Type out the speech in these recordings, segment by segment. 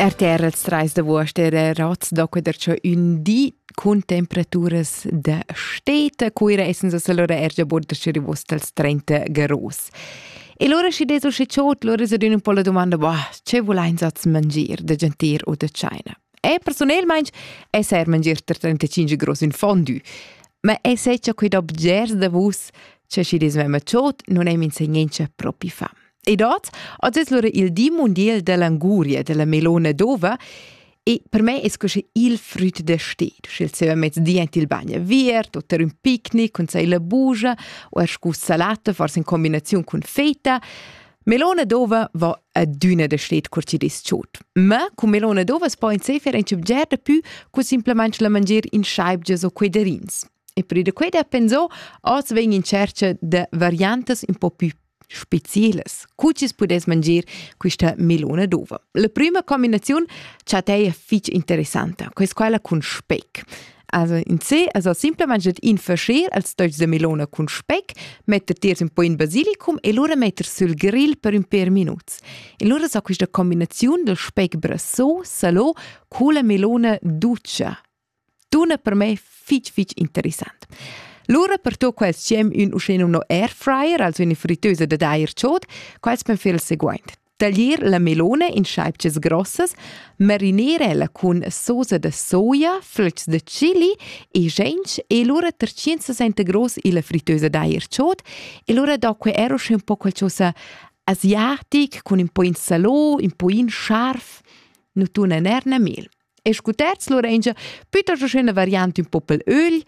RTR els trais d'avuost era rots da queder cho ün di cun temperaturas da steta. Cuira essens as allora er già bod da rivos dals 30 graus. E lura schi des usci ciot, lura se dün un po la domanda, boh, ce vul eins az mangir da gentir o da China? E personelmaing es er mangir ter 35 graus in fondü. Ma e se cha quid objers da vus, che schi des mema ciot, non è minsegnentscha propi fam. E dat az es lura il di mundial della Anguria, della melona d'ova, e per me es così il früt da sted, sch'el seva mez di ant il bagn aviert, o ter ün picnic cun sai la bugia, o er scu salata, forse in combinaziun cun feta, Melona d'ova va adüna da sted cur chi dis chod. Ma cun melona d'ova es po in sefer in ch'obgerda pü cu simplamaing la mangier in schaibgias o quedarins. E pür da quai da pensar, oz vegn in tschercha da variantas un po più specielas. Cu chi's pudess mangir quista melona d'uva? La prüma combinaziun cha t'ei fich interessanta, quais quella cun speck. Also in se, also simplemente in fascher als togls da melona cun speck, metter tiers un po in basilicum e lura metter sul grill per ün pêr minuts. E lura s'ha quista combinaziun del speck brassò, salò, cu la melona dutscha. Tuna per me fitg fitg interessant. Lura per tu quels siem ün uschè nomno air fryer, also üna frittösa dad air chod, quels pan fer il seguaint. Taglier la melone in scheibches grossas, marinerela cun sosa da soia, flöcs da chili e gench e lura ter 160 gross illa frittösa d'air chod e lura do que er uschè un po qualchosa asiatic cun ün po in salò, ün po in scharf, nu tuna ner ne mel. E scu terz lura ingia püttas üna variant ün popel ögl,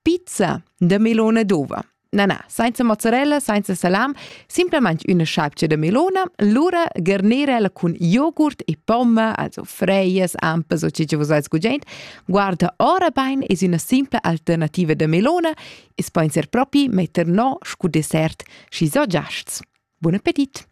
pizza da melona d'ova. Na na, sainza mozzarella, sainza salam, simplamaing üna sciapcha da melona, lura garnerella cun jogurt e pomma, also freias, ampas o chi vus ais gugent, guarda ora bain es üna simpla alternativa da melona e's po inser propi metter no scu dessert, schi so giasts. Bun appetit!